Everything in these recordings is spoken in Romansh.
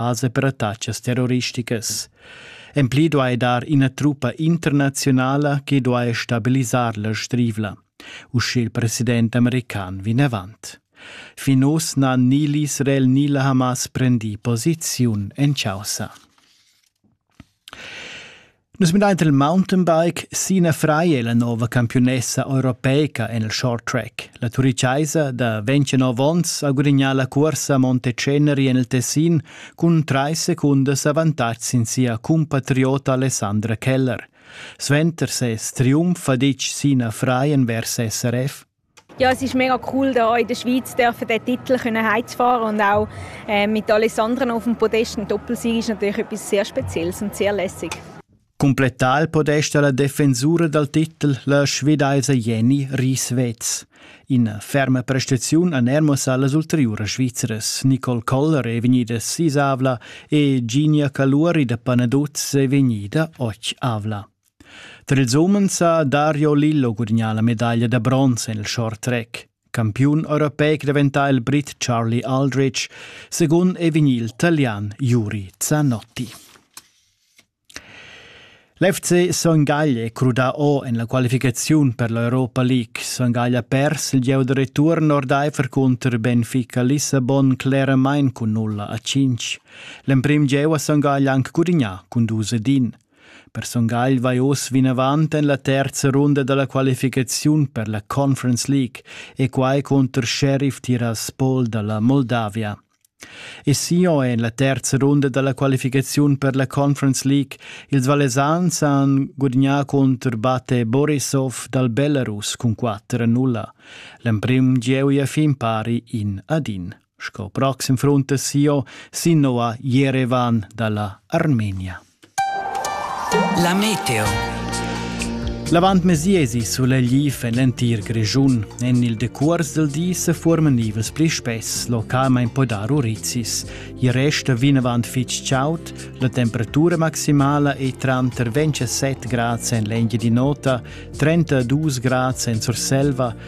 als apparatatschas terroristicas. En pli duai dar ina truppa internaziunala che duai stabilisar la strivla, uschè il president american vinavant. Fin oz n'ha ni l'Israel ni la Hamas prendì posiziun en chaussa. Nus midain il mountainbike Sina Freie, la nova campiunessa europeica en il short track. La turichaisa da 29 onns ha gudignà la cursa Monte Ceneri en il Tessin cun trais secundas avantatg sin sia cumpatriota Alessandra Keller. Suenter ses triumf ha ditg Sina Freien vers SRF Ja, es ist mega cool, hier in der Schweiz dürfen den Titel können heimzufahren und auch äh, mit Alessandren auf dem Podest. Ein Doppelsieg ist natürlich etwas sehr Spezielles und sehr lässig. Completar il podest alla difensura dal titel la svedese Jenny Rieswetz. In ferma prestaziun a Nermos allas ulteriuras Svizras Nicole Koller è vegnida sisavla e Ginia Caluori da Panaduz è vegnida och avla. Tar ils umens ha Dario Lillo gudagnà la medaglia da bronz en il short track. Campiun europeic daventà il Brit Charlie Aldrich, secund è vegnì il Italian Juri Zanotti. L'FC Son Gaglie è crudà o en la qualificaziun per l'Europa League. Son Gaglie ha pers il gieu da return ordaifer cunter Benfica Lissabon cleramain cun nulla a 5. L'emprim gieu ha Son Gaglie anc gudagnà cun dus ed in. Per Son Gagl vai oz vinavant en la terza runda da la qualificaziun per la Conference League e quai cunter Sheriff Tiraspol da la Moldavia. E sio è en la terza runda da la qualificaziun per la Conference League. Ils Valesans han gudagnà contro Bate Borisov dal Belarus cun 4-0. L'emprim gieu è fin pari in ad in. sco proxim frontasio sino a Jerevan dalla Armenia. La meteo. L'avant mesiesi sulegliv en l'entir Grischun. En il decuors del di se formen ivels pli spess, localment po dar urizis. I resta vinavant fitg chaud, la temperatura maximala è tranter 27 grads en l'engia di nota, 32 grads en Surselva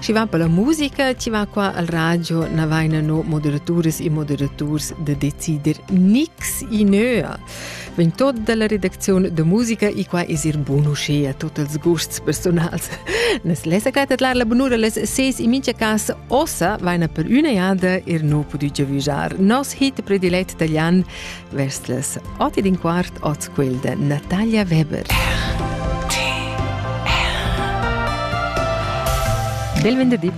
Schi va per la musica, ti va qua al radio, na vaina no moderaturas e moderaturs da decider nix i nöa. Vegn tot dalla redaczione da musica e qua es ir bun uschea tot els gusts personals. Nes lesa gaita lar la bunura les seis in mincha casa ossa vaina per üna jada ir no pudü giavüjar. Nos hit predilet italian Vest les oti din quart ot quel de Natalia Weber. Bel venerdì!